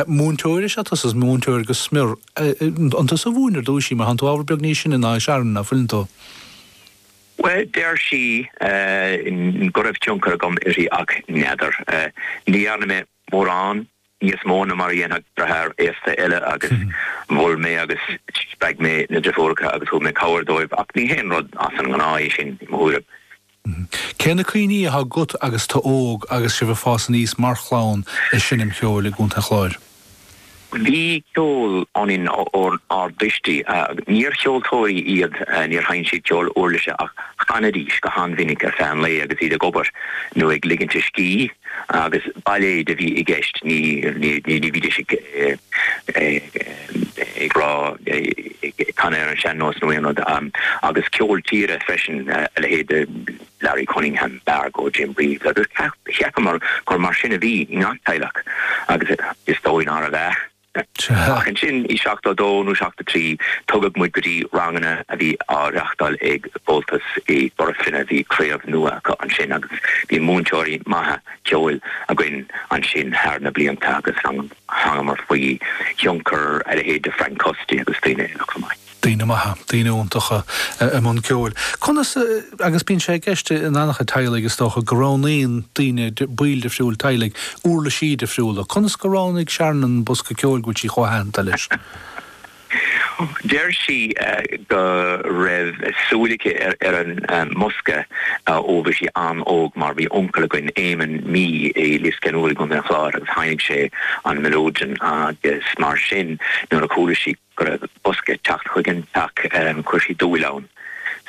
Múinteoir is ea tusa, is múinteoir go smior. An tusa a mhúin ar dtúis í? Mar tánn tú ábhar beag níos sine ná í, Sharon, ná fuileann tú? Bhuel, deir sí go raibh tionchar agam uirthi ach n'fheadar. Ní dhearna mé mórán níos mó ná mar a dhéanfadh deartháir aosta eile agus mhol mé agus spreag mé na deirfiúracha agus thug mé cabhair dóibh ach ní haon rud as an ngnáth é sin, i mo thuairim. Cé na cuimhní atá agat agus tú óg agus sibh ag fás aníos mar chlann ag seinm cheoil i gContae an Chláir? Bhí ceol ionainn ónár dtuistí. Níor cheoltóirí iad, níor sheinn siad ceol uirlise ach chanaidís go han-mhinic ar feadh an lae agus iad ag obair nó ag ligint a scíth agus bailéid a bhí i gceist, ní bhídís ag ag rá canadh ar an sean nós nó aon rud agus ceol tíre freisin a leithéid de Larry Cunningham, Margo, Jim Reeves agus cheapamar gur mar sin a bhí i ngach teaghlach agus is dóigh nárbh ea. Ach ansin i seachtó a dó nó seachtó a trí tugadh muid go dtí ranganna a bhí á reachtáil ag Comhaltas i gCora Finne. Bhí craobh nua acu ansin agus bhí múinteoirí maithe ceoil againn ansin thar na blianta agus an. Thángamar faoi thionchar a leithéid de Frank Custy agus daoine eile chomh maith. Daoine maithe, daoine iontacha i mbun ceoil. Conas, agus bíonn sé i gceist in an-chuid teaghlaigh is dócha, go roghnaíonn daoine, baill difriúil teaghlaigh, uirlisí difriúla. Conas gur roghnaigh Sharon an bosca ceoil go bhfuil sí chomh haitheanta leis? Deir sí go raibh súil aici ar an mbosca ó bhí sí an-óg mar bhí uncail againn, Éamon Mee, i Lios Ceannúir i gContae an Chláir agus sheinn sé an mileoidean agus mar sin nuair a chuala sí go raibh bosca ag teacht chuig an teach chuir sí dúil ann.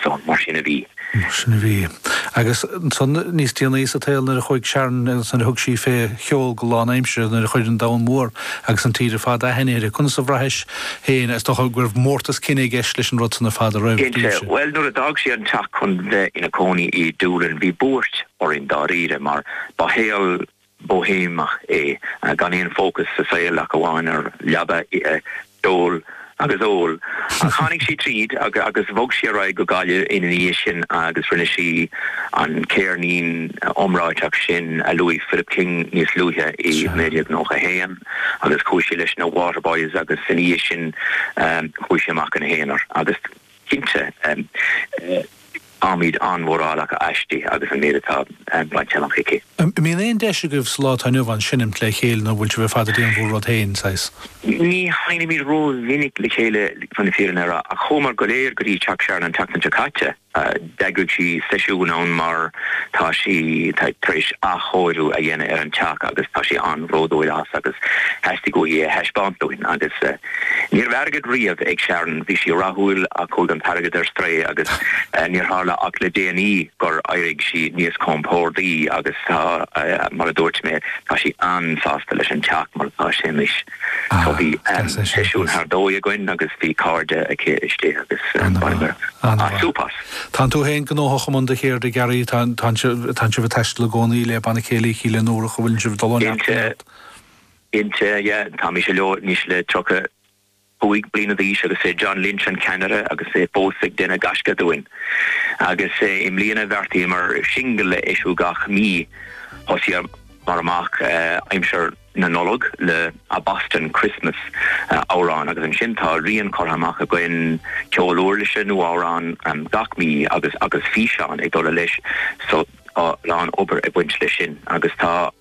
So, mar sin a bhí. Mar sin a bhí. Agus ansan níos déanaí sa tsaol nuair a chuaigh Sharon, nuair a thug sí fé cheol go lánaimseartha, nuair a chuir an domhan mór agus an tír ar fad aithne uirthi, conas a bhraithis féin, is dócha go raibh mórtas cine i gceist leis an rud san ar fad an raibh? Bhuel, nuair a d'fhág sí an teach chun bheith ina cónaí i Doolin bhí buairt orainn dáiríre mar ba shaol, Boihéamach é, gan aon fócas sa saol ach amháin ar leaba, ithe, ceol agus ól. Ach tháinig sí tríd agus bhog sí ar aghaidh go Gaillimh ina dhiaidh sin agus rinne sí an céirnín iomráiteach sin a luaigh Philip King níos luaithe i 1991 agus chuaigh sí leis na Waterboys agus ina dhiaidh sin chuaigh sí amach ina haonar agus Cinnte, táimid an-mhórálach aisti agus an méid atá bainte amach aici. An mbíonn aon deis agaibh sa lá atá inniu ann seinimt le chéile nó bhfuil sibh ar fad ag déanamh bhur rud féin, saghas? Ní sheinimid ró-mhinic le chéile, chun na fírinne a rá, ach chuamar go léir go dtí teach Sharon an tseachtain seo caite. D'eagraigh sí seisiún ann mar tá sí tar éis athchóiriú a dhéanamh ar an teach agus tá sí an-bhródúil as agus theastaigh uaithi é a thaispeáint dúinn. Agus ní raibh airgead riamh ag Sharon, bhí sí rathúil ach chuaigh an t-airgead ar strae agus níor tharla ach le déanaí gur éirigh sí níos compórdaí agus tá, mar a dúirt mé, tá sí an-sásta leis an teach mar atá sé anois. So bhí seisiún ar dóigh againn agus bhí cairde aici istigh agus bhaineamar súp as. Tá tú féin gnóthach i mbun do cheirde, a Ghearaí. Tá sibh ag taisteal i gcónaí le Banna Céilí Chill Fhionnúrach, an bhfuil sibh ag dul ó neart go neart? Cinnte, yeah. Tá mise leo anois le tríocha cúig bliana d'aois agus is é John Lynch an ceannaire agus é fós ag déanamh gaisce dúinn. Agus i mbliana bheartaíomar singil a eisiúint gach mí. Thosaíomar amach aimsir. na Nollag le A Boston Christmas, amhrán, agus ansin tá rian curtha amach againn, ceol uirlise nó amhrán gach mí agus agus físeán ag dul leis so tá a lán obair ag baint leis sin agus tá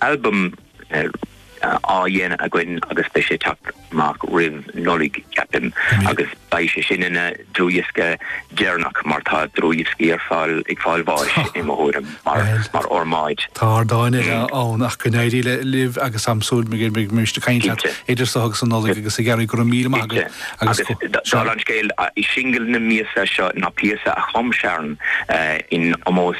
albam á dhéanamh againn agus beidh sé ag teacht amach roimh Nollaig, ceapaim, agus beidh sé sin ina dlúthdhiosca deireanach mar tá dlúthdhioscaí ar fáil ag fáil bháis, i mo thuairim, mar fhormáid. Tá ardáin eile ann ach go n-éirí libh agus tá súil go mbeidh mise ag caint leat idir seo agus an Nollaig agus ag iarraidh go raibh míle maith agat agus go. Dála an scéil, singil na míosa seo ná píosa a chum Sharon in omós.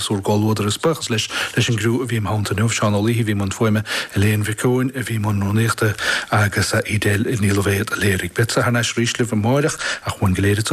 As bhur gcomhluadar is buíochas leis an gcriú a bhí im theannta inniu, Seán Ó Laoithe a bhí i mbun fuaime, Elaine Mhic Eoin a bhí i mbun rúnaíochta agus Edel Ní Loibhéad a léirigh. Beadsa thar n-ais arís libh amáireach ach uainn go léir.